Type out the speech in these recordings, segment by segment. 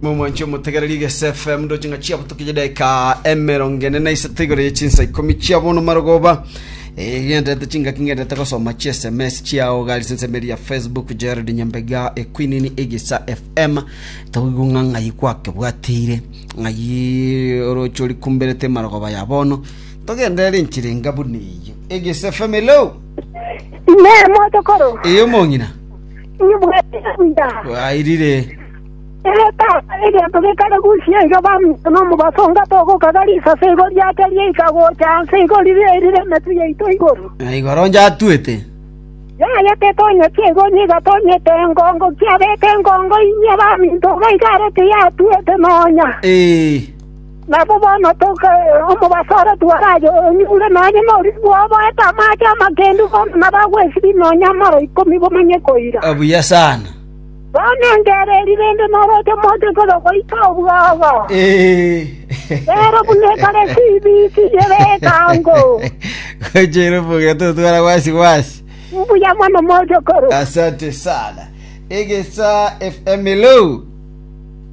Momwanche omotegererie gese FM ndoche ng'a chiabo toke chideka emerongo ene na isato igoro ye chinsa ikomi chia bono marogoba egenderete chingaki ngenderete gosoma chia sms chiao gari sense media facebook jared nyambega ekwinini egesa fm toigwe ng'a ng'ai gwakebwatire ng'ai oroche ori kumberete marogoba ya bono togenderere enchera enga buna eyo egesa fm hello Nemo tokoro. eyo mong'ina Inwe mwaetera buya. Bwairire. Ee, Tata, egento gekare gochia iga baminto nomobaso onga togokaga risase igo riake riaika gocha anse igo riria erire emetwe yaito igoro. Na igoro njatwete. Yayete etonyeti igo onye igatonyete engongo kiabete engongo inye baminto iga iga arete yatwete nonya. Ee. Nabo bono toka omobaso ore twarache onyure nonya noriri bw'oboete amaache amakendu bono nabagwesibie nonya amaro ikomi bomanye koira. Buya sana. Bono engeera eri rende noroche moche koda goita obwago. Rero buna ekare CBC ere ekango. Gocha ere omokia totwara wasi wasi. Mbuya mono mochokoro. Asante sana. Egesa FM hello.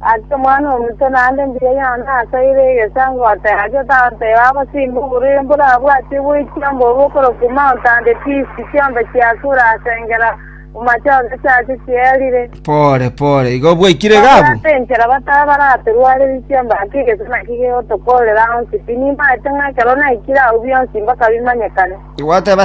Ase Omwana-o-motwe naende mbuya yane asaire egesango ateebia Tata eye agosimbe oborwaire mborabwatie goitia mbobe okorokwa Mount and Peace, chiombe chiasure ase engera amachotha chiacho chierire. Pore pore, igo bwaikire Iga abwo? Babwate enchera bataba baratorwarerie chiombe ake egeso naki gegotokorera onsi. Tinimaete ng'a ekero naikire agwo bionsi mpaka bimanyekane. Gwateba